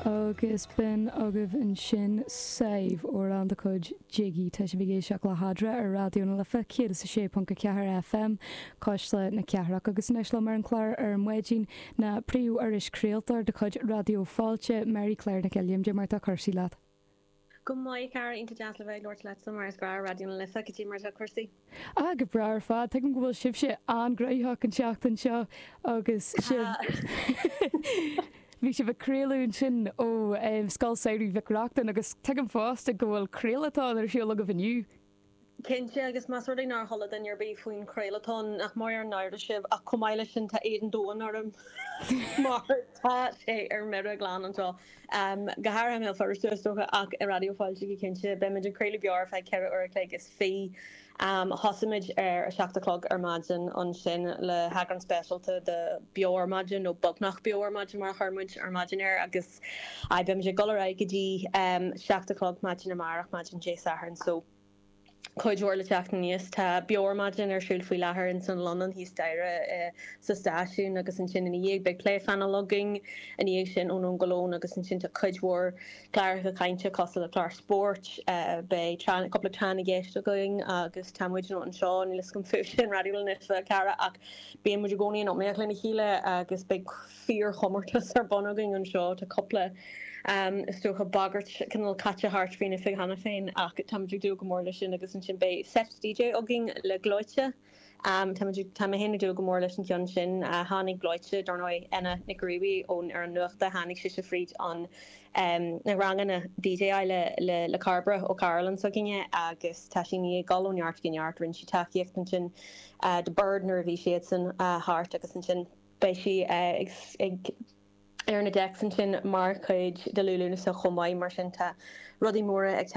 Agus b'in agaibh ansin Sadhbh amhrán de chuid Jiggy. Tá sibh ag éisteacht le hEadra ar Raidió na Life 106.4 FM, Cuisle na Cathrach. Agus anois liom ar an chlár ar maidin, ná príomh-iris craoltóir de chuid Raidió Fáilte, Mary Claire Nic Uilliam. Dé mar tá cúrsaí leat. Go maith, a chara iontach deas le bheith ag labhairt leatsa mar is breá Raidió na Life cad é mar atá cúrsaí. Ah, go breá ar fad, tuigim go bhfuil sibhse an-ghnoitheach an tseachtain seo agus sibh, bhí sibh ag craoladh ansin ó Scoil Samhraidh Mhic Reachtain agus tuigim fosta go bhfuil craolathon ar siúl agaibh inniu. Cinnte, agus más rud é nár chuala duine ar bith faoin chraolathon, nach mór an náire sibh, ach chomh maith leis sin, tá éad an domhain orm, mar tá sé ar mire glan anseo, go háirithe i mBéal Feirste, is dócha, ach i Raidió Fáilte go cinnte. Beimid ag craoladh beo ar feadh ceithre uair a chloig is fiche. Thosaigh muid ar a seacht a chlog ar maidin ansin le heagrán speisialta de Beo Ar Maidin, nó Beagnach Beo Ar Maidin mar a chuir muid ar maidin air, agus. aye, beimid ag dul ar aghaidh go dtí ehm seacht a chlog maidin amárach, maidin Dé Sathairn, so cuid mhór le teacht aníos. Tá Beo Ar Maidin ar siúl faoi láthair ins an Lunnon thíos staighre sa stáisiún agus ansin ina dhiaidh beidh pléphainéal againn, ina dhiaidh sin Ó Nóin go Lón agus ansin tá cuid mhór cláracha cainte cosúil le clár spóirt, eh beidh tráth na cúpla tráth na gceist againn agus tá muid ann anseo, níl fhios agam fúibhse in Raidió na Life a chara ach bíonn muid i gcónaí in iomaíocht lena chéile agus beidh fíorchomórtas ar bun againn anseo. Tá cúpla, is dócha, bagairt cineál caite thart faoin oifig cheana féin ach táimid ag dúil go mór leis sin agus ansin beidh seit DJ againn le Gleoite. Táimid, tá mé féin ag dúil go mór leis an gceann sin. Tháinig Gleoite, dar ndóigh, Eithne Nic Ghriallais ón fhoireann nuachta, tháinig sise fríd an, na ranganna DJ le, le, le Cairbre Ó Cairealláin s'againne agus tá sí i ndiaidh dul ó neart go neart, rinne sí tacaíocht ansin do Biird nuair a bhí siadsan thart agus ansin, Beidh sí ag ar na decks ansin mar chuid de Liú Lúnasa chomh maith, mar sin tá rudaí móra ag teacht.